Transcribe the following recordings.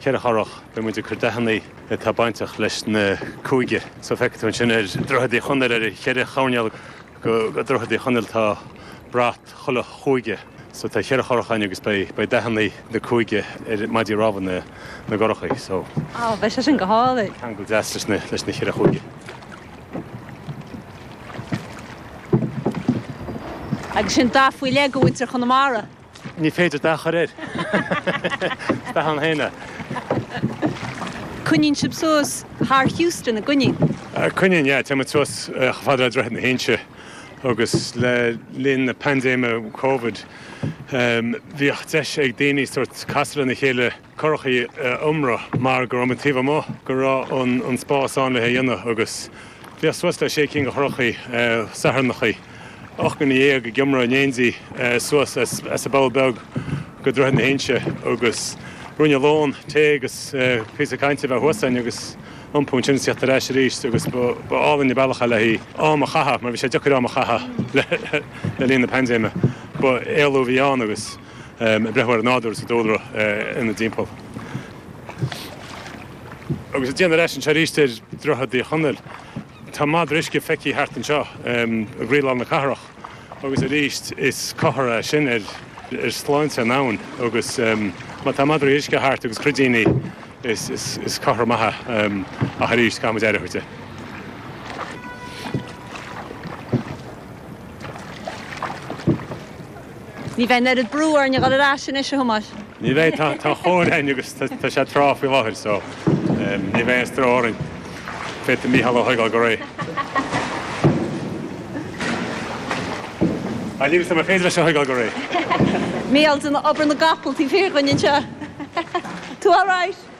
Ceithre churach, beidh muid ag cur dathannaí atá bainteach leis na cúige. So feicfidh tú ansin ar Dhroichead Uí Chonaill, ar cheithre choirnéal go Dhroichead Uí Chonaill tá brat chuile chúige. So tá cheithre churach ann agus beidh dathannaí na cúige ar maidí rámha na gcurachaí. So. Á, beidh sé sin go hálainn. ceangal deas leis na cheithre chúige. Agus sin dath faoi leith go mhuintir Chonamara. Ní féidir dath a chur air. Dath an fhíona. Coinníonn sibh suas thar Heuston i gcónaí. Coinníonn, yeah. Téann muid suas chomh fada le Droichead na hInse agus le linn na paindéime Covid bhíodh deis ag daoine sórt casadh lena chéile currach a iomramh mar go raibh muid taobh amuigh, go raibh an spás ann le hé a dhéanamh agus bhíodh suas le sé cinn de churrachaí Satharnachaí, ocht nduine dhéag ag iomramh in éindí suas as an bPoll Beag go Droichead na hInse agus ruainne lóin, tae agus píosa cainte a bheith thuas againn agus iompú ansin is a theacht ar ais arís agus ba álainn an bealach é le haghaidh am a chaitheamh mar bhí sé deacair am a chaitheamh le linn na paindéime. Ba éalú a bhí ann agus. ag breathnú ar an nádúr is an dúlra inár dtimpeall agus ag déanamh ar ais anseo arís ar Dhroichead Uí Chonaill. Tá madra uisce feicthe thart anseo i gcroílár na cathrach agus arís is comhartha é sin ar shláinte an abhainn agus má tá madraí uisce thart agus cruidíní is comhartha maith é ach arís caithfidh muid aire a thabhairt air. Ní bheidh an oiread brú orainn a dhul ar ais anois, a Thomáis. Ní bheidh, tá an chóir againn agus tá sé ag trá faoi láthair so ní bheidh aon stró orainn. Féadfaidh Mícheál é a thógáil go réidh. Tá liomsa mar féidir leis a thógáil go réidh. Mícheál ag déanamh obair na gcapall, taobh thiar dhúinn anseo. Tú alright?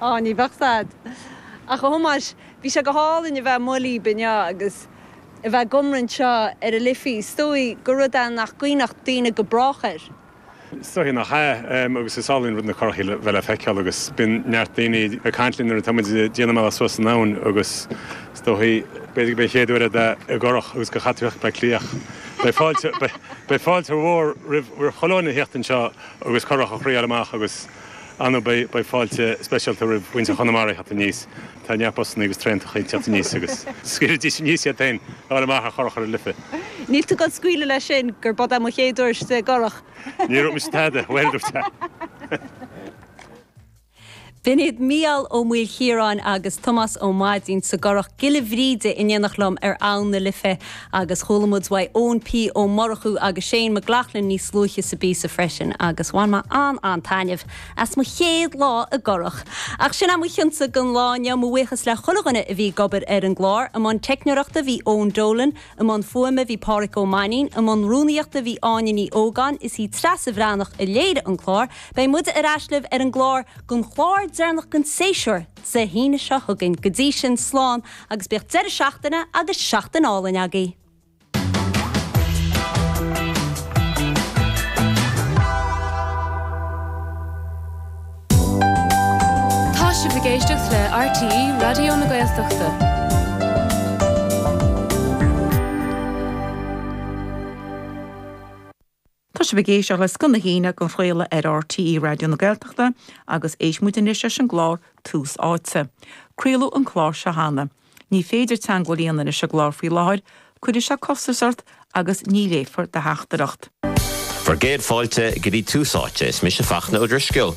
Á, ní bheadh said. Ach a Thomáis, bhí sé go hálainn a bheith amuigh libh inniu agus a bheith ag iomramh anseo ar an Liffey. Is dóigh gur rud é nach gcuimhneodh daoine go brách air. Is dóichí nach ea, agus is álainn an rud na currachaí a bheith le feiceáil agus bíonn neart daoine ag caint linn nuair atá muid ag déanamh ár mbealach suas an abhainn agus is dóichí, b'fhéidir go mba an chéad uair duit a bheith i gcurrach agus gur chaith tú a theacht go Bleá Cliath. Beidh fáilte mhór roimh chuile dhuine a theacht anseo agus currach a thriáil amach agus. Ar ndóigh beidh fáilte speisialta roimh mhuintir Chonamara a theacht aníos. Tá neart busanna agus traentachaí ag teacht aníos agus scaoilidís aníos iad féin le dhul amach ar churach ar an Life. Níl tú ag goil ag scaoileadh leis sin gurb iod é mo chéad turas i gcurach. Níor dhúirt mise tada, bhuel dúirt sé. B'in iad Mícheál Ó Maoilchiaráin agus Tomás Ó Maidín sa gcurach Gile Bhríde in éineacht liom ar abhann na Life. Agus chuala muid uaidh Eoin P. Ó Murchú agus Shane McLoughlin níos luaithe sa bpíosa freisin agus bhain mé an-an-taitneamh as mo chéad lá i gcurach! Ach sin é mo chion-sa don lá inniu. Mo bhuíochas le chuile dhuine a bhí ag obair ar an gclár. I mbun teicneoireachta bhí Eoin Dolan, i mbun fuaime bhí Páraic Ó Mainín, i mbun rúnaíochta bhí Áine Ní Ógáin, is í Treasa Bhreathnach a léirigh an clár. Beidh muide ar ais libh ar an gclár, don chlár deireanach den séasúr, Dé hAoine seo chugainn. Go dtí sin, slán agus bíodh deireadh seachtaine agus seachtain álainn agaibh! Tá sibh ag éisteacht le RTÉ Raidió na Gaeltachta. Tá sibh ag éisteacht le Scoth na hAoine den chraoladh ar RTÉ Raidió na Gaeltachta agus éistfidh muid anois leis an gclár Tús Áite. Craoladh an clár seo cheana. Ní féidir teagmháil a dhéanamh leis an gclár faoi láthair, cuirfidh sé costas ort agus ní léifear do theachtaireacht. Bhur gcéad fáilte go dtí Tús Áite, is mise Fachtna Ó Drisceoil.